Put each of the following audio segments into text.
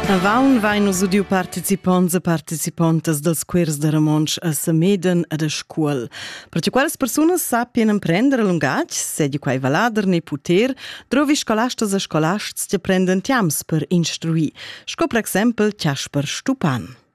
Avaun vain nus udiu participonts e participontas dals quers da Ramonsch a Sameden ed a Scuol. Perche quelles persunas sappien emprender lungatg, sedi quai valader ne puter, drovi scolastas e scolasts che prenden tiams per instruir, sco per exempel Chasper Stupan.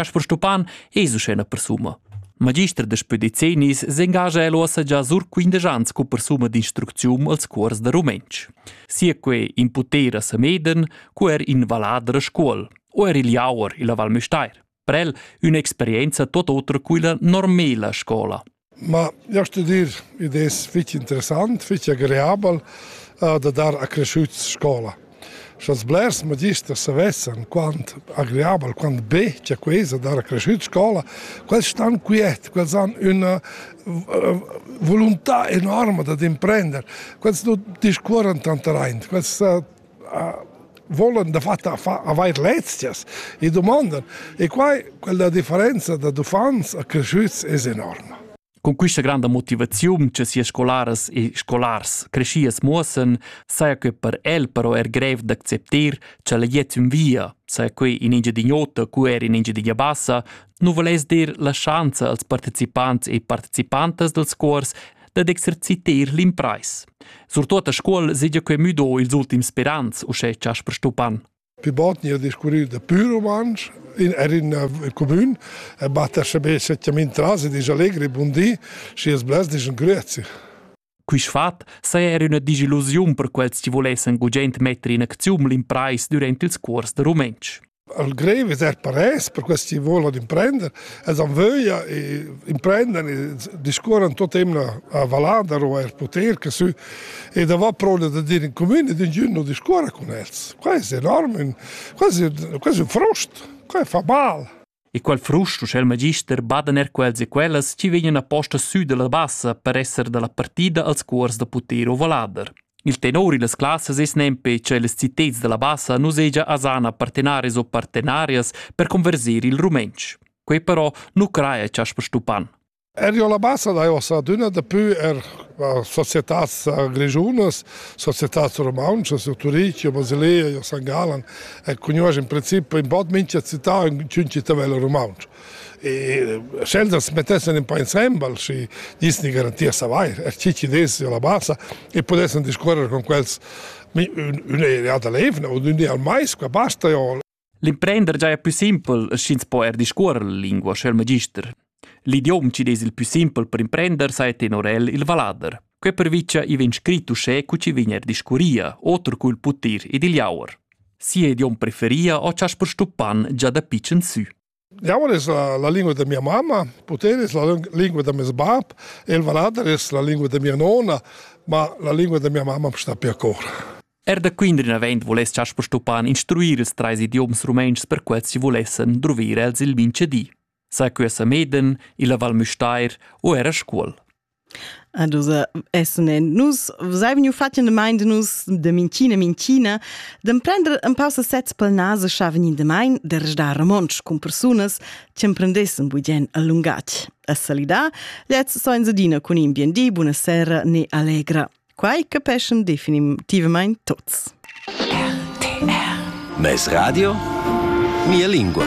Chasper Stupan es uschè üna persuna. Magister daspö decennis s'engagia el uossa già sur quindesch ans scu persuna d'instrucziun als cuors da rumentsch. Sia que in puter a Sameden, cu er in vallader a Scuol, o er il Jauer illa Val Müstair. Per el ün'experienza tot otra cu illa normela scola. Ma jau sto dir, id es fich interessant, fich agreabel uh, da dar a creschüts scoula. Scha'ls blers magisters savessan quant agreabel, quant be cha que es da dar a creschüts scoula, quels stan quiet, quels han üna vuluntà enorma dad imprender. Quels nu discuorran tant raint, quels volan dafatta avair lezias e domandan. E quai, quella differenza da uffants a cresciuts es enorma. Con questa grande motivazione che sia scolaras e scolars crescias muossen, saja che per el però er grev d'acceptar che la jet in via, saja che in Engiadin'Ota, cu er in Engiadin'Abassa, nu volais dir la schanza als partecipants e participantas dals cuors dad exerciter l'impreis. Surtut a scuol segia quei müdo ils ultims sperans, uschè Jasper Stupan. Vi botni a discurrir da pur rumantsch in er in comun e batter sebe setjament tras e dis allegri bundi si es blas dis grüezi. Quist fat saja er üna disillusiun per quels chi volessan gugent metter in acziun l'imprais durant ils cuors da rumentsch. al grev es er parès per quels chi volan imprender, els han vöglia e imprendan e discuoran tot emna a Valada o er poter che sü e da va prola da dir in comune ed ingün non discuora con els. Quai es enorm, quasi quasi un frost, quai fa mal. E qual frust uschè il magister badan er quels e quellas chi vegnan aposta sü dalla bassa per esser dalla partida als cuors da puter o valader. Il tenor illas classas es nempe che les citets dalla bassa nu segia asana partenaris o partenarias per converser il rumentsch. Quei però nu craja chasper Stupan. Erio la bassa dai ossa adüna dapü er societats grischunas, societats rumauntschas, io Turich, io Basilea, io San Galan e cugnuosch in princip ün bod mincha città ün ün cittadella rumauntscha. E sch'els as mettessan ün pa insembel, schi gnissani garanti a savair, er chi chi dess io la bassa e pudessan discuorrer con quels ün ün'eria da l'eivna u ün di al mais, qua basta, io L'imprender giaja pü simpel, sch'ins po eir discuorrer la lingua scu il magister. L'idiom chi'd es il pü simpel per imprender saja tenor el il vallader. Quai pervicha i vegn scrit uschè cu chi vegn eir discurria, oter cu il putir ed il jauer. Sia idiom preferia ho chaspar stuppan già da pitschen sü. Diavol es la lingua da mia mamma, Putel es la lingua da meis bap, El Valader es la lingua da mia nona, ma la lingua da mia mamma sta per cor. Er da Quindrin avend voless Chas Stopan instruir ils treis idioms rumentschs per quels chi volessen druvir els il minchedi. Sa que sa Meden, illa Val Müstair o era Scuol. Ah dus essen en nus sai vegnu fatg in demain de nus de minchina minchina d'emprender empau se sez pel nase schaven in demain de resdar romontsch cun persunas che emprendessen bugen a lungatg a salidar lez so in sedina cun in bien di buna sera ne allegra quai capeschan definitivamain tuts RTR Mes radio mia lingua